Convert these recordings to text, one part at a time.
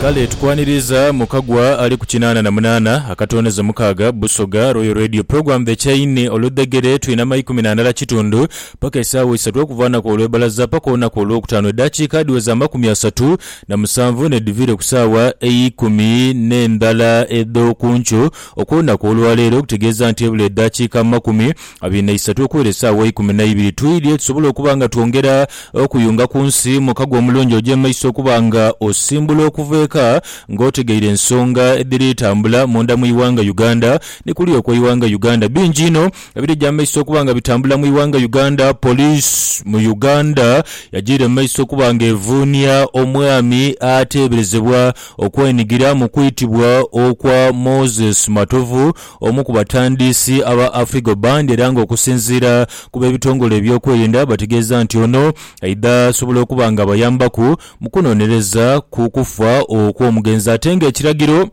Kale tukwaniriza mu Kagwa ali ku kinaana na munaana akatonezo mukaaga, Busoga Royal Radio Program The Chain oludhegere twina ma ikumi na ndala kitundu paka esaawa isatu okuva anaku olwebalaza paka onaku olwokutaano edaakiika adhiweza amakumi asatu na musanvu nedhiviire ku saawa eikumi ne ndala edhokuncu okwonaku olwaleero okutegeeza nti ebula edaakiika amakumi Abaine eisatu okuwera esaawa eikumi na ibiri twidhye tusobole okuba nga twongera okuyunga ku nsi mu kago omulungi oja emaiso okuba nga osimbula okuva eka nga otegeire ensonga edhiri tambula munda mu ighanga Uganda ni kuli okwe ighanga Uganda. Bingi inho ebirija emaiso okuba nga bitambula mu ighanga Uganda. Police mu Uganda yajiira emaiso okuba nga evuunia omwami ateeberezebwa okwenigira mu kwitibwa okwa Moses Matovu, Omu ku batandiisi aba Afrigo Band era nga okusinziira ku b'ebitongole eby'okwerinda bategeeza nti ono aidha sobola okuba nga abayambaku mu kunonereza ku kufa okw'omugenzi ate nga ekiragiro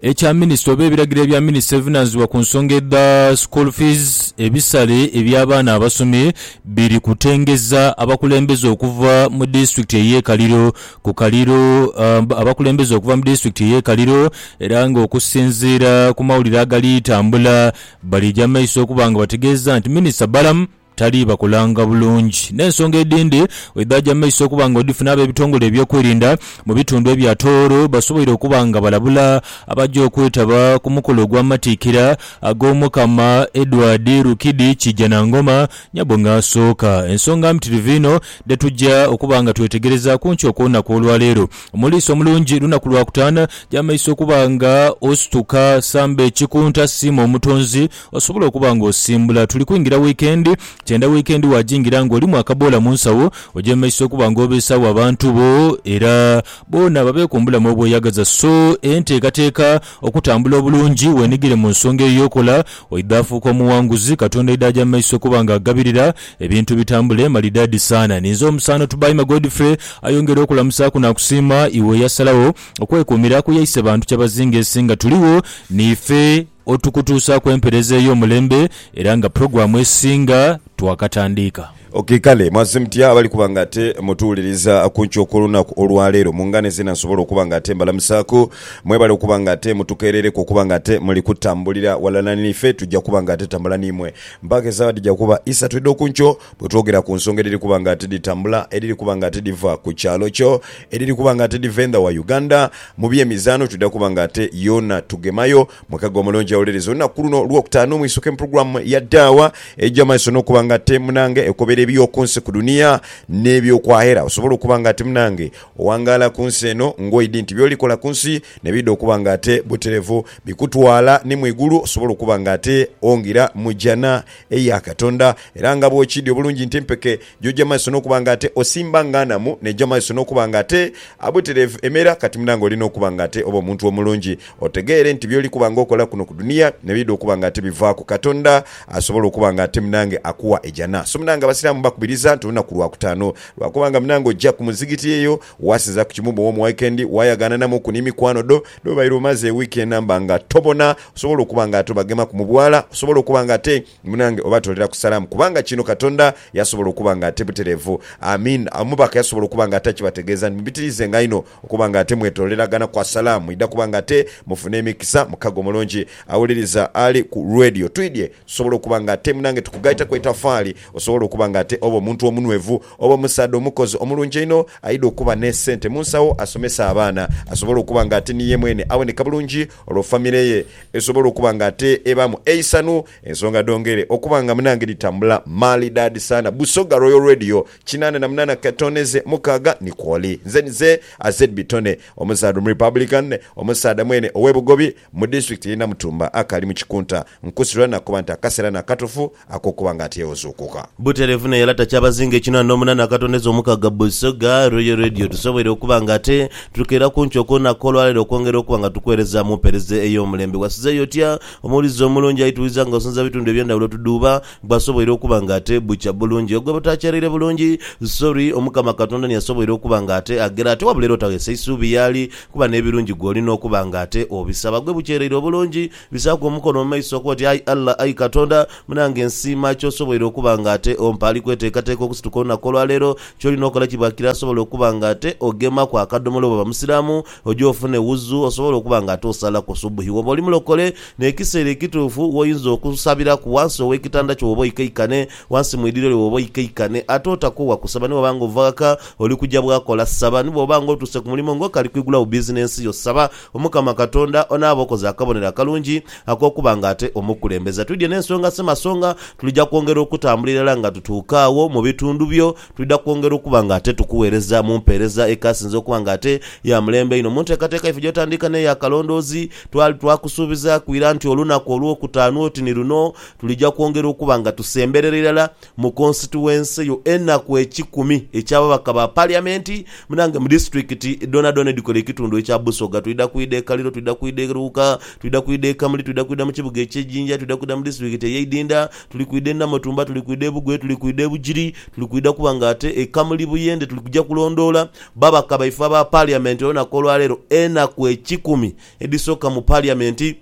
ekya minisita oba ebiragiro ebya minisita evunanzibwa ku nsonga edha school fees ebisale eby'abaana abasomi biri kutengeza abakulembeze okuva mu disitulikiti ey'e Kaliro ku Kaliro abakulembeze okuva mu disitulikiti ey'e Kaliro era nga okusinziira ku mawulire agali tambula balija mu maiso okuba nga bategeeza nti Minisita Balaam tali bakolanga bulungi n'ensonga edindi bwedhaja mu maiso okuba nga odhifuna ab'ebitongole eby'okwerinda mu bitundu ebya Tooro basoboire okuba nga balabula abaja okwetaba ku mukolo ogw'amatikkira ag'Omukama Edward Rukidi Kijanangoma Nyabo nga asooka. Ensonga mpitirivu inho dhe tuja okuba nga twetegerezaaku nkyo okw'olunaku olwaleero. Omuliisa omulungi lunaku lwa kutaana gy'amaiso okuba nga osituka. Samba ekikunta, siima Omutonzi osobole okuba nga osimbula. Tuli kwingira wiikendi, kyenda wiikendi waagingira ng'olimu akaboola mu nsawo, ogy'emaiso okuba nga obeesaagho abantu bo era boona babeeku mu bulamu obweyagaza. So enteekateeka Okutambula obulungi, weenhigire mu nsonga eyo y'okola, oidha afuuka omughanguzi. Katonda aidha aja mu maiso okuba nga agabirira, ebintu bitambule malidaadi saana. Ninze omusaano Tubaime Godfrey ayongere okulamusaaku n'akusiima iwe eyasalagho okwekuumira ku yaise bantu kyabazinga ensi nga tuligho niife otukutuusaaku empereeza ey'omulembe era nga pulogulaamu esinga twakatandiika. Ok, kale mwaze mutya abali kuba nga ate mutuwuliriza ku nkyo okw'olunaku olwa leero? Mu ngane zeena nsobola okuba nga ate mbalamusaaku. Mwebale okuba nga ate mutukeerereku okuba nga ate muli kutambulira ghalala n'ife. Twija kuba nga ate tambula n'imwe mpaaka esaawa dhija kuba isatu edh'oku nkyo bwe twogera ku nsonga edhiri kuba nga ate dhitambula, edhiri kuba nga ate dhiva ku kyalo kyo, edhiri kuba nga ate dhiva endha wa Uganda. Mu by'emizaano twidha kuba nga ate yoona tugemayo. Mwekaghe omulungi awuliriza olunaku luno Olwokutaanu, mwisuke mu pulogulaamu ya Daawa eja maiso n'okuba nga te munange ekobera eby'oku nsi ku dunia n'eby'oku akhera osobole okuba nga te munange owangaala ku nsi eno ng'oidhi nti by'olikola ku nsi n'ebidha okuba nga te buterevu bikutwala ni mu igulu osobole okuba nga te ongira mu Jjana eya Katonda era nga bw'okiidhi obulungi nti empeke gy'oja maiso n'okuba nga te osimba nga nhamu n'eja maiso n'okuba nga te abuterevu emera kati munange olina okuba nga te oba omuntu omulungi Otegeere nti by'oli kuba nga okola kuno ku dunia n'ebiidha okuba nga ate bivaaku, Katonda asobola okuba nga ate munange akuwa e Jana. So munange Abasiraamu mbakubiriza nti olunaku lwa Kutaano lwa kuba nga munange oja ku muzigiti eyo waasinza ku kimu bw'omu waikendi waayagaananamuku ni mikwano dho n'obaire omaze e wiiki enamba nga tobona osobola okuba nga ate obagemaku mu bwala osobola okuba nga ate munange obatooleraku salaamu kubanga kino Katonda yasobola okuba nga ate butereevu. Aamiin. Omubaka yasobola okuba nga ate akibategeeza nti mubitiriizenga inho. Okuba nga ate mwetooleragana kwa salaam, mwidha kuba nga ate mufuna emikisa. Mukago mulungi awuliriza ali ku Radio. Twidhye tusobole okuba nga ate munange tukugaitaku etafaali osobole okuba nga ate oba omuntu omunwevu, oba omusaadha omukozi omulungi einho aidha okuba n'esente mu nsawo asomese abaana asobole okuba nga ate ni ye mwene aboneka bulungi olwo famire ye esobole okuba nga ate ebaamu eisanhu. Ensonga dhongere okuba nga munange dhitambula maalidaadi sana. Busoga Royal Radio Kinaana na munaana Katoone ze mukaaga ni Kwoli. Nze ni ze Azedby Tone, omuzaadha Omurepublican, omusaadha mwene ow'e Bugobi mu disitulikiti y'e Namutumba akaali mu kikunta. Nkusirirwa nakuba nti akaseera ni akatufu ak'okuba nga ati yewuzuukuka. Butereevu naye era takyabazinga ekinaana n'omunaana Katoone ze omukaaga Busoga Royal Radio tusoboire okuba nga ate tukeera ku nkyo ku lunaku olwaleero okwongera okuba nga tukuweereza mu mpeereza ey'omulembe. Wasizeeyo otya? Omuwulize omulungi aituwiza nga osinza bitundu eby'endhawulo tudhuuba Bwasoboire okuba nga ate bukya bulungi ogwe butakyalire bulungi sorry omukama katonda niye asoboire okuba nga ate agera ate wabula era otaghesa isuubi yaali kuba nebirungi gwe olina okuba nga ate obisaba gwe bukyereire obulungi bisaaku omukono mumaiso okoba oti ayi Allah ayi katonda munange nsiima kyosoboire okuba nga ate ompa ali kwetekateka okusituka olunaku olwaleero kyolina okola kibwakira asobola okuba nga ate ogemaku akadomola bwoba musiramu oje ofune wuzu osobole okuba nga ate osalaku subuhi woba oli mulokole N'ekiseera ekituufu gh'oyinza okusabiraku ghansi ow'ekitanda kyo bw'oba oikaikane, ghansi mu idhiro lyo bw'oba oikaikane. Ate otakoowa kusaba ni bw'oba nga ova ghaka oli kuja bwakola. Saba ni bw'oba nga otuuse ku mulimo ng'okali kwigulagho bizinensi yo. Saba Omukama Katonda onaabe okoze akabonero akalungi ak'okuba nga ate omukulembeza. Twidhie n'ensonga semasonga, tulija kwongera okutambula irala nga tutuuka agho mu bitundu byo. Twidha kwongera okuba nga ate tukuweereza mu mpeereza ekaasinze okuba nga ate ya mulembe einho. Mu nteekateeka yaife gy'otandika n'ey'akalondoozi, twali twakusuubizaaku ira nti olunaku Olwokutaanu oti ni luno, tulija kwongera okuba nga tusemberera irala mu konsituwense yo enaku ekikumi eky'ababaka ba Paliyamenti naange mu disiturikiti dhoonadhoona edhikola ekitundu ekya Busoga. Twidha kwidha e Kaliro, twidha kwidha e Luuka, twidha kwidha e Kamuli, twidha kwidha mu kibuga eky'e Jinja, twidha kwidha mu disiturikiti ey'e Idinda, Tuli kwidha e Namutumba, tuli kwidha e Bugwere, tuli kwidha e Bugiri, tuli kwidha kuba nga ate e Kamuli Buyende tuli kuja kulondoola babaka baife aba Parliament olunaku olwaleero enaku ekikumi edhisooka mu Parliament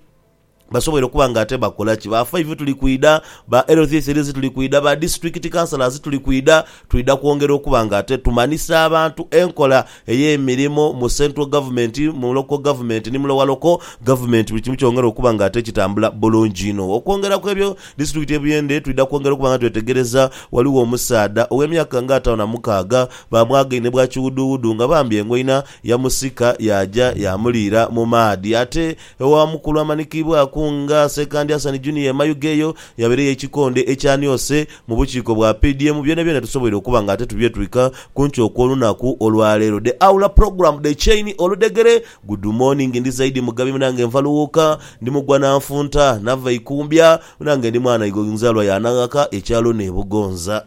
basobole okuba nga ate bakola ki? Ba Five tuli kwidha, ba Health Aces tuli kwidha, ba District Councillors tuli kwidha, twidha kwongera okuba nga ate tumanhisa abantu enkola ey'emirimo mu Central Government, mu Local Government ni mu Lower Local Government buli kimu kyongera okuba nga ate kitambula bulungi inho. Okwongera ku ebyo, Disitulikiti y'e Buyende twidha kwongera okuba nga twetegereza ghaligho omusaadha ow'emyaka nga ataano na mukaaga baamwagaine bwa kiwuduwudu nga bambi engoina yamusika yaaja yaamuliira mu maadhi ate omu ku lwamanikiibwaku nga Ssekandi Hassan Junior e Mayuge eyo yabeereyo ekikonde ekyaniose Mu bukiiko bwa PDM byonabyona tusoboire okuba nga ate tubyetwika ku nkyo okw'olunaku olwaleero. The Aula Program The Chain Oludhegere Good morning ndi Zaidi Mugabi munange nva Luwuuka ndi mugwa na nfunta nava Ikumbya munange ndi mwana igo nzalwa ya Naghaka ekyalo n'e Bugonza.